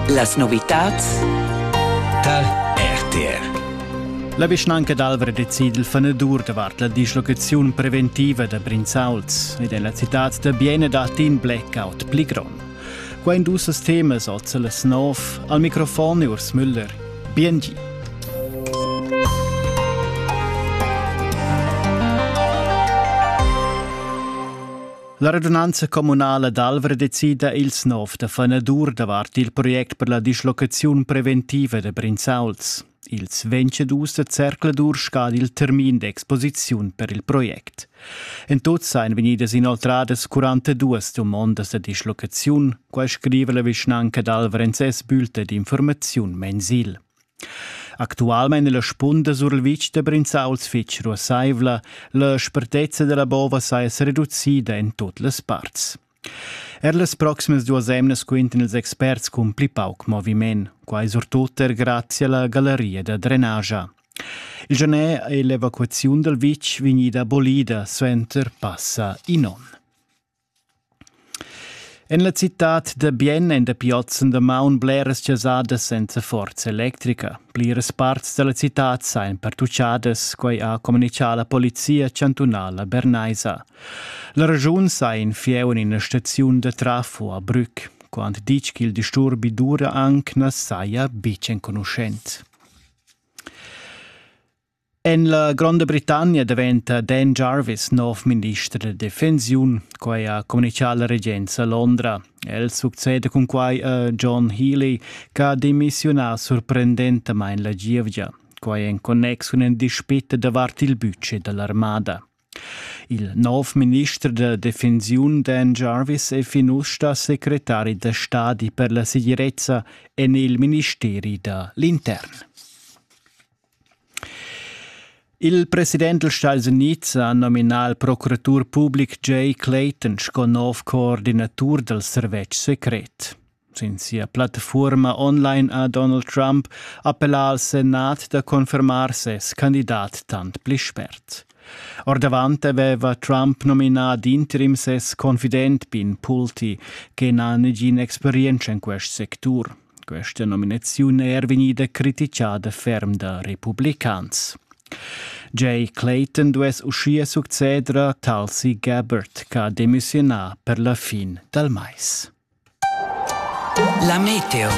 Las novitads tar RTR. La vischnanca d'Alvra decide il fanedur davart la dislocaziun preventiva da Brinzauls ed en la citad da Biene dat in blackout pli grond. Qua in dus temas oz las nov al microfon Urs Müller. BNG. La radunanza communala d'Alvra decida ils nov da fanadur davart il project per la dislocaziun preventiva da Brinzauls. Ils vencedus da Zercladur scad il termin d'exposiziun per il project. En tut seien vegnidas inoltradas 42 domondas da dislocaziun, quai scrive la vischnanca d'Alvrenz es Bülte d'informaziun mensil. Actualmein è la spunda sur il vitg da Brinzauls fitg ruassaivla, la spertezza dalla bova saja sereducida en tut las parts. Er las proximas duas emnas quintan ils experts cun pli pauc moviment, quai surtut er grazie alla galleria da drenagia. Il genè è l'evacuaziun dal vitg vegnida abolida suenter passa in onn. En la citad da Bien èn dapi oz en damaun bleras chasadas senza forza electrica. Pliras parts da la citad sajan pertuchadas, quai ha communitgà la polizia chantunala bernaisa. La regiun sa in fieu en ina staziun da trafo a Brück. Quant ditg ch'il disturbi dura anc na saja betg enconuschent. En la Gronda Britannia daventa Dan Jarvis nov minister da defensiun. Quai ha communitgà la regenza a Londra. El succeda cun quai a John Healy che ha demissiunà sorprendentamain la gievgia. Quai en connex cun in dispit davart il budget da l'armada. Il nov minister da defensiun Dan Jarvis è fin ussa secretari da stadi per la segirezza en il ministeri da l'intern. Il president dals Stats Unids ha nominà il procuratur public Jay Clayton sco nov coordinatur dal servetsch secret. Sin sia plattafuorma online ha Donald Trump appellà al Senat da confermar ses candidat tant pli spert. Ordavant aveva Trump nominà d'interim ses confident Pin Pulte, che n'ha negina experienza in quest sectur. Questa nominaziun è er vegnida criticada ferm da republicans. Jay Clayton duess uschia succeder a Tulsi Gabbard ch'ha demissionà per la fin dal mais. La meteo.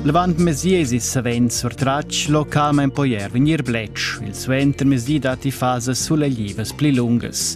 Levant mesiesi savens surtratg localmain poi er vegnir bletsch. Il suentermezdi datti fasas suleglivas pli lungas.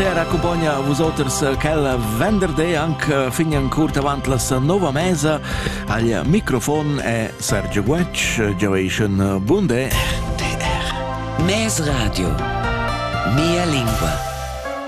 RTR accumpagna vusoters quel venderday anche fin ancora davanti la nuova mesa al microfon è Sergio Guetsch, Generation Bunde. DR. Mes Radio. Mia lingua.